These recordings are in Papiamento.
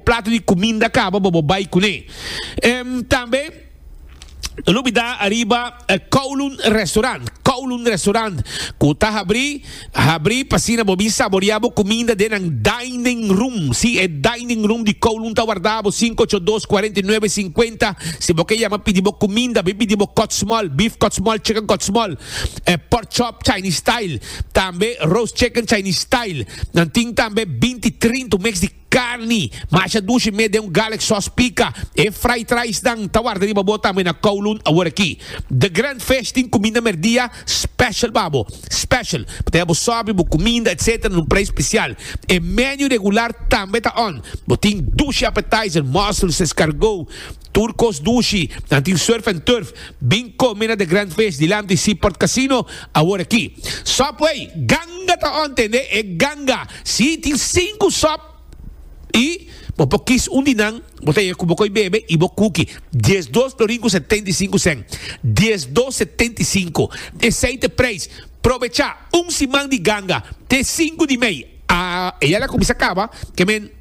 Plato di cuminda caba bobo bay cune. Tambe no bida ariba Kowloon Restaurant. Kowloon Restaurant cu ta habri habri pa asina bo bin saborea bo cuminda den nan dining room. Si e dining room di Kowloon ta warda bo sinku ocho dos cuarenta y nueve cincuenta. Si bo ke yama pidi bo cuminda bin pidi bo kottsmol, beef kottsmol, chicken kottsmol, pork chop Chinese style. Tambe roast chicken Chinese style. Nan tin tambe binti trintu mix di carni masha dushi mee den un garlic sauce pica. E fried rice nan ta warda riba bo tambe na Kowloon awor aki. The Grand Fish tin cuminda merdia special pa bo. Special. Pa taya bo sobri, bo cuminda etc. Na un prijs special. E menu regular tambe ta on. Bo tin dushi appetizer, mussels, escargot. Tur kos dushi, nan tin surf and turf, bin kome na The Grand Fish dilanti Seaport Casino awor aki. Sop wey, ganga ta on tende e ganga, si tin sinku sop y bo por kis un di nan bo ta yega cu bo koy bebe y bo kuki. Dies dos florin cu setenta y sinku cen, dies dos setenta y sinku, esey t'e prijs, probecha un siman di ganga te sinku di mey, ah eyala cuminsa caba, ke men.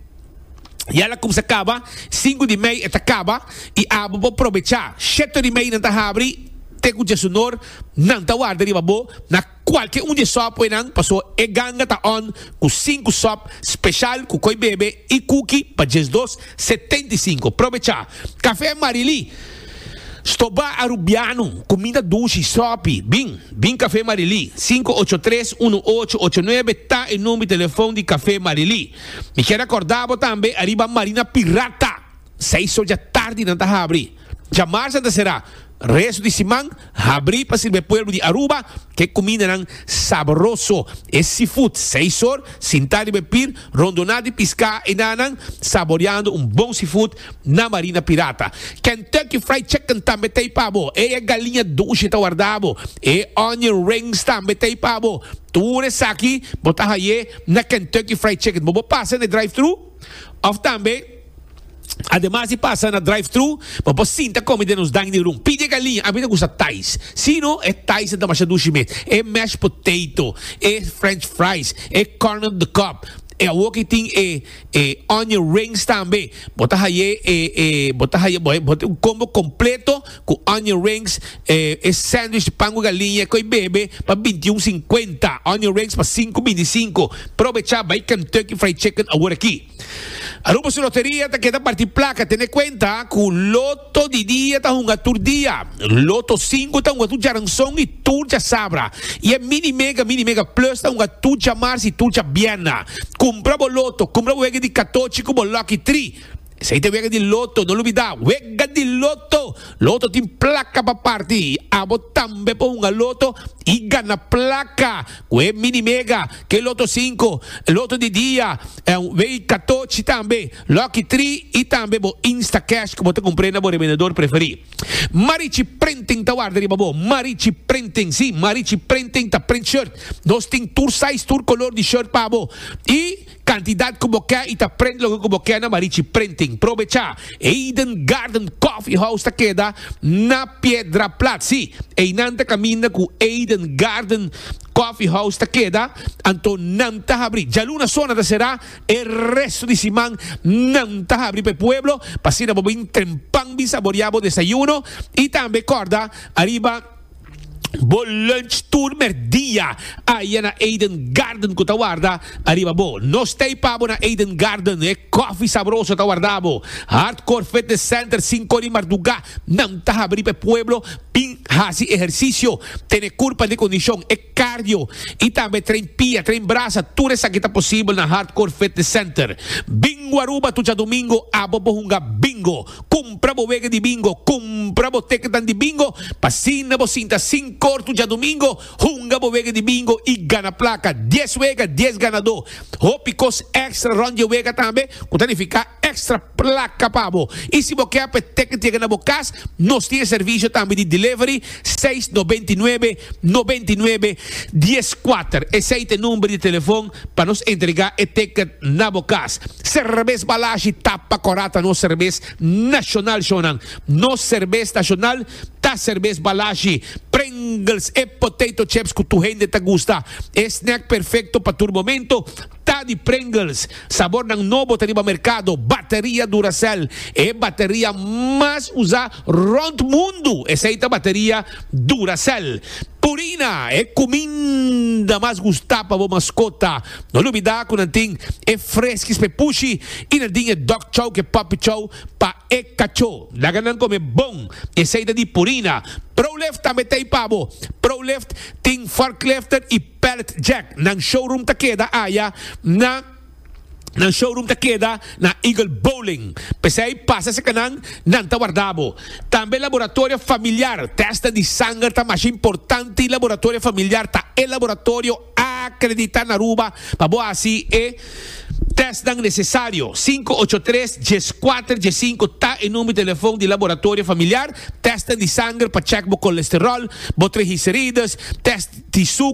Ya la kumsa kaba, sinku di mei e ta kaba i abo por probechá. Sheto di meinan ta habri te ku djesunor nan ta warda riba bo na kualke un dje sòpwenan, pasó e ganga ta on ku sinku sòp speshal ku koi bebe i kuki pa djes dos setenta i sinku. Probechá. Kafé Marilí, Stobá Arubiano, kuminda dushi, sòpi. Bin, bin Kafé Marilí. Sinku ocho tres, uno ocho ocho nuebe ta e number di telefòn di Kafé Marilí. Mi kier recorda bo tambe ariba marina pirata seis solja tardi nan ta habri. Dja marsa ta sera, resto di siman habri pa sirbe pueblo di Aruba ke kumindanan sabroso. E seafood seis or sinta riba e pir rondona di pisca enanan saboreando un bon seafood Na Marina Pirata, Kentucky Fried Chicken tambe ta ei pa bo. E e galiña dushi ta warda bo. E onion rings tambe ta ei pa bo. Tur esaki bo ta haye na Kentucky Fried Chicken. Bo bo pasa na e drive-thru of tambe ademas di pasa na drive-thru bo por sinta komi den nos dining room. Pidi e galiña, a mi ta gusta Thais. Si no, e Thais ta damasia dushi mes. E mashed potato, e French fries, e corn on the cob, E awor ki tin e e onion rings tambe bo ta haye e e bo ta haye bo bo un combo completo cu onion rings e e sandwich pan cu galiña cu e bebe pa binti y un cincuenta onion rings pa sinku binti y sinku probecha bay Kentucky Fried Chicken awor aki Aruba su loteria ta keda parti placa tene cuenta cu lo To di dia ta hunga tur dia. Loto sinku ta hunga tur djaranson i tur djasabra. I e Mini Mega, Mini Mega Plus ta hunga tur djamars i tur djabièrna. Kumpra bo loto, kumpra bo wega di katochi ku bo lòki tri. Esei ta e wega di loto, no lo bida, wega di loto! Loto tin plaka pa parti i abo tambe por hunga loto i gana plaka. Cu e mini mega, ke loto cinco, loto di dia, en wei katochi tambe, lucky tri y tambe bo Instacash cu bo ta cumpre na bo revendedor preferi. Marichi Printing ta warda riba bo. Marichi Printing, si, Marichi Printing ta print shirt. Nos tin tur size, tur color di shirt pa bo y. Cantidad cu bo ke y ta prent loke cu bo ke na Marichi Printing. Probecha! Eden Garden Coffee House ta keda na Piedraplaats. Si, einan ta caminda cu Eden Garden Coffee House ta keda, anto nan ta habri. Djaluna so nan ta cera, e resto di siman nan ta habri pa e pueblo, pa asina bo bin trempan bin saboria bo desayuno y tambe corda ariba. bo lunch tur merdia aye na Eden Garden cu ta warda ariba bo. No stay pabo na Eden Garden, e coffee sabroso ta warda bo. Hardcore Fitness Center cinco di marduga nan ta habri p'e pueblo bin haci ehercicio, tene curpa di condicion, e cardio y tambe train pia, train brasa, tur esaki ta posibel na Hardcore Fitness Center. Bingo Aruba tu djadomingo abo bo hunga bingo. Cumpra bo wega di bingo, cumpra bo teketan di bingo pa asina bo sinta sin cortu djadumingo, hunga bo wega di bingo y gana placa, dies wega, dies ganador, hopi cos extra rond dje wega tambe cu ta nifica extra placa pa bo. Y si bo ke a p'e teket yega na bo cas, nos tin e servicio tambe di delivery, seis noventa i nuebe noventa i nuebe dies kuater esei ta e number di telefon pa nos entrega e ticket na bo kas serbes balashi tapa kora ta nos serbes nashonal shonnan nos serbes nashonal ta serbes balashi pringles e potato chips ku tur hende ta gusta e snack perfekto pa tur momento. Ta di Pringles, sabornan nobo ta riba merkado, bateria Duracell, e bateria mas usa rond mundu esei ta bateria Duracell. Purina, e kuminda mas gusta pa bo maskota, no lubida ku nan tin e freskis p'e pushi i nan tin e dog chow ke puppy chow pa e kachó. Laga nan kome bon, esei ta di Purina. Prolift tambe t'ei pa bo. Prolift tin forklifter i. Pallet Jack nan showroom ta keda aya na Nan showroom ta keda na Eagle Bowling, p'esei pasa serka nan, nan ta warda bo. Tambe laboratorio familiar, tèstnan di sanger ta masha importante, laboratorio familiar ta e laboratorio akreditá na Aruba pa bo hasi e tèstnan nesesario. Sinku ocho tres, dies kuater, dies sinku ta e number di telefon di laboratorio familiar, tèstnan di sanger pa chèk bo kolesteròl, bo trigiserides, tèst di suker.